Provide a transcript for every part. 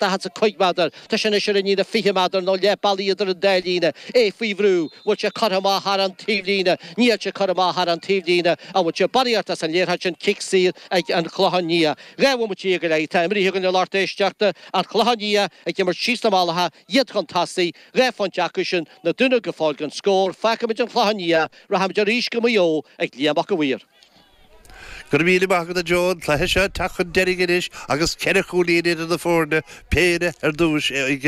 daichead 's a cúig méadar. Tá sé anois ar an líne fiche méadar nó leith bealaigh idir an dá líne. É faoi bhrú. Bhfuil sé curtha amach thar an taobhlíne? Níl sé curtha amach thar an taobhlíne. An bhfuil sé baraithe ort as an léarthach sin cic saor ag an Chlochán Liath. Dhá bhomaite dhéag go leith atá imrithe againn a lucht éisteachta. An Clochán Liath ag imirt síos na malacha, iad chun tosaigh, dhá phointe acu sin, na Dúnaibh go fóill gan scór. Fágfaimid an Clochán Liath. Rachaimid arís go Maigh Eo ag Liam Mac a' Mhaoir. Go raibh míle maith agat a Joe, an cluiche seo ag teacht chun deiridh anois agus ceithre chúilín idir na foirne, péire ar dtúis ag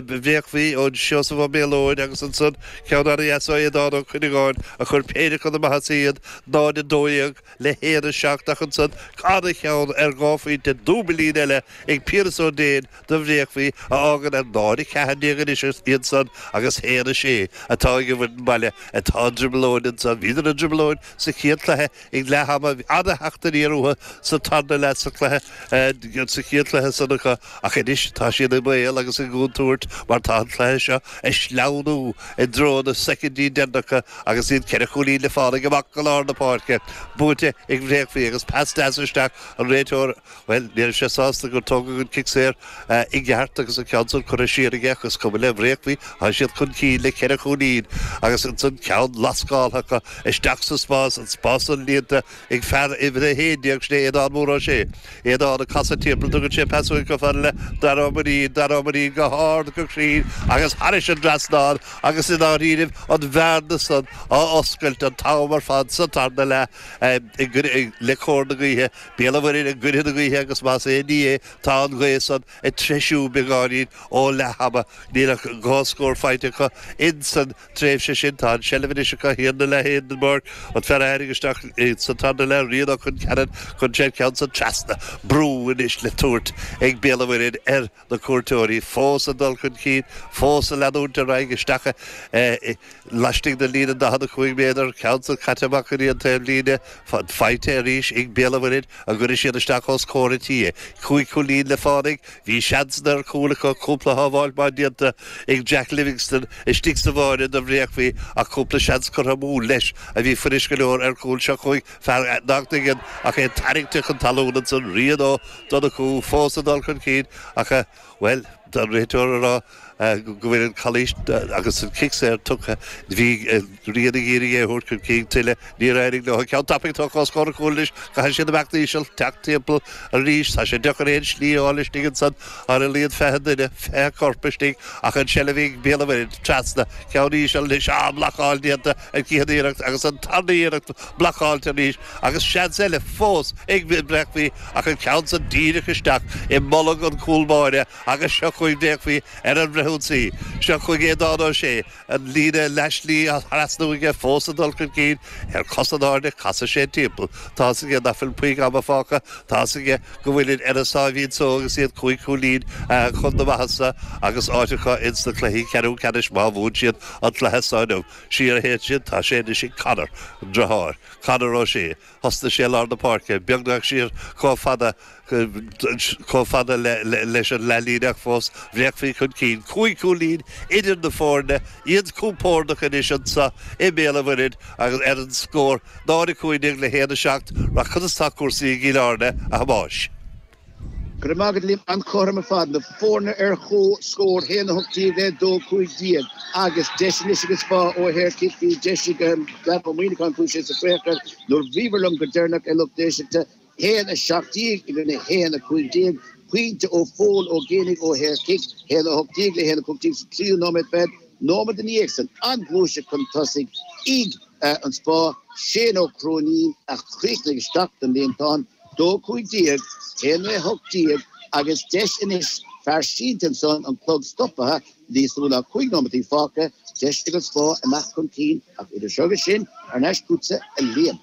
Bréachmhaigh ó Seosamh Ó Méalóid agus ansan ceann ana dheas ó Aodán Ó Cuinneagáin a chuir péire chun na maitheasa iad, 0-12 le 1-7 ach ansan an-cheann ar dhá phointe, dúbailín eile ag Piaras Ó Déin. do Bhréachmhaigh, a fhágann ar náid 14 anois iad san agus 1, 6 atá ag an bhfoireann baile atá i dtrioblóid anso. Bhíodar i dtrioblóid sa chéad cluiche ag leath ama, bhí an-theacht aniar uathu sa tarna leath sa cluiche, sa chéad cluiche san acu ach anois tá siad i mbaol agus i gcontúirt mar tá an cluiche seo ag sleamhnú i dtreo na soicindí deireanacha agus iad ceithre chúilín le fánaidh amach go lár na páirce, buaite ag Bréachmhaigh agus pas deas isteach an réiteoir. Bhuel, ní raibh sé sásta gur tógadh an cic saor i gceart agus an ceann san curtha siar aige ach is cuma le Bréachmhaigh, tá siad chun cinn le ceithre chúilín agus ansan ceann lascáltha acu isteach sa spás, an spás san líonta ag fear uimhir a haon déag, sin é Aodhán Mór Ó Sé. Aodhán ag casadh timpeall, tugann sé pas uaidh chomh fada le Dara Ó Mainnín, Dara Ó Mainnín go hard, go cruinn agus thairis an dtrasnán agus i ndáiríribh an bhearna san á oscailt an t-am ar fad sa tarna leath le cóir na gaoithe. Béal an Mhuirthead i gcoinne na gaoithe agus más aon ní é tá an ghaoth san ag treisiú beagáinín ó leathama. Níl ach dhá scór faighte acu in san tréimhse sin. Tá an tseilbh anois acu thiar 'na leith Hindenburg, an fear a tháinig isteach sa tarna leath Rian ó Chill Ceanainn chuir sé an ceann san trasna brú anois le tabhairt ag Béal an Mhuirthead ar na cuairteoirí fós ag dul chun cinn, fós ag leanúint ar aghaidh isteach laistigh den líne 45 méadar, ceann san caite amach go dtí an taobhlíne, faighte arís ag Béal an Mhuirthead an gcuirfidh siad isteach os comhair an tí. Cúig chúilín le fánaidh, bhí seansanna ar chúl acu, cúpla shábháil maith déanta ag Jack Livingston istigh sa bháire do Bhréachmhaigh ach cúpla seans curtha amú leis a bhí fuirist go leor ar chúl seo chuaigh fear Knocknagon ach é tarraingte chun talún ansan Rian Ó Donnchú fós ag dul chun cinn ach bhuel tá an réiteoir á rá go bhfuil an calaois agus an cic saor tugtha bhí Rian ag iarraidh é a thabhairt chun cinn tuilleadh níor éirigh leo an ceann tapaidh tógtha os comhair an chúil anois caithfidh siad imeacht íseal teacht timpeall arís tá sé deacair aon slí a fháil istigh ansan ar a laghad fiche duine fiche corp istigh ach an tseilbh ag Béal an Mhuirthead trasna ceann íseal anois an bhlocáil déanta an chéad iarracht agus an tarna iarracht blocáilte arís Agus seans eile fós ag Bréachmhaí ach an ceann san díreach isteach i mbolg an chúl báire agus seo chugainn Bréachmhaí ar an bhfrithionsaí. Seo chugainn Aodán Ó Sé, an líne leathslí á thrasnú aige fós ag dul chun cinn ar cos in airde casann sé timpeall. Tá's aige nach bhfuil puinn ama fágtha, tá's aige go bhfuilid ar a sáimhín só agus iad cúig chúilín chun na maitheasa agus áit acu ins na cluichí ceathrú ceannais má bhuann siad an cluiche so inniu. Siar a théann siad, tá sé anois ag Conor, an driotháir. Conor Ó Sé. Thosnaigh sé i lár na páirce, beagnach siar comh fada comh fada le leis an leathlíne ach fós, Bréachmhaí chun cinn. Cúig chúilín idir na foirne, iad compórdach anois anso i mBéal an Mhuirthead agus ar an scór 0, 15 le 1, 7. Ach conas tá cúrsaí i gCill Airne, a Thomáis. Go raibh maith agat Liam, an-chothrom ar fad, na foirne ar comhscór, 1, 18, 2, 15, agus deis anois ag an Spá ó shaorchic bhí deis ag Daragh Ó Muíneacháin chuaigh sé sa phréachar nuair bhíobhair liom go deireanach a lucht éisteachta, 1, 17 i gcoinne 1, 15, pointe ó Phól Ó Géibheannaigh ó shaorchic, 1, 18 le 1, 15 sa tríú nóiméad fichead nóiméad ina dhiaidh san, an-ghluaiseacht chun tosaigh ag an Spá, Shane Ó Cróinín a chríochnaigh isteach don líontán. dó cúig déag, aon a hocht déag agus deis anois fear sínte ansan, an clog stopaithe, níos lú ná cúig nóimeataí fágtha, deis ag an Spá a theacht chun cinn ach idir seo agus sin, thar n-ais chugatsa, a Liam.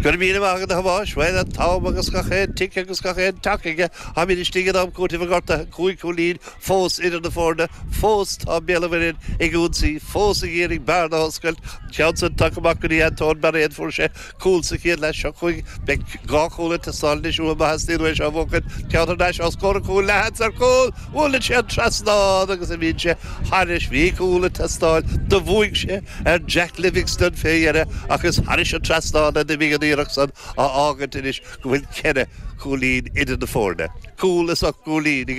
Go raibh míle maith agat a Thomáis, bhain an t-am agus gach aon tic agus gach aon tac aige, táimid istigh in am cúitimh do ghortuithe, cúig chúilín fós idir na foirne, fós tá Béal an Mhuirthead ag ionsaí, fós ag iarraidh bearna a oscailt, an ceann san tagtha amach go dtí Antóin Bairéad, fuair sé cúl sa chéad leath seo chugainn. Beidh dhá chúl ag teastáil anois uathu má theastaíonn uathu é seo a bhuachaint. Ceann thar n-ais os comhair an chúil leathsheans ar chúl! Buaileann sé an trasnán agus imíonn sé thairis. Bhí cúl ag teastáil. Do bhuaigh sé ar Jack Livingstone fé dheireadh ach is thairis an trasnán a d'imigh an iarracht san á fhágaint anois go bhfuil ceithre chúilín idir na foirne. Cúl is ocht gcúilín ag an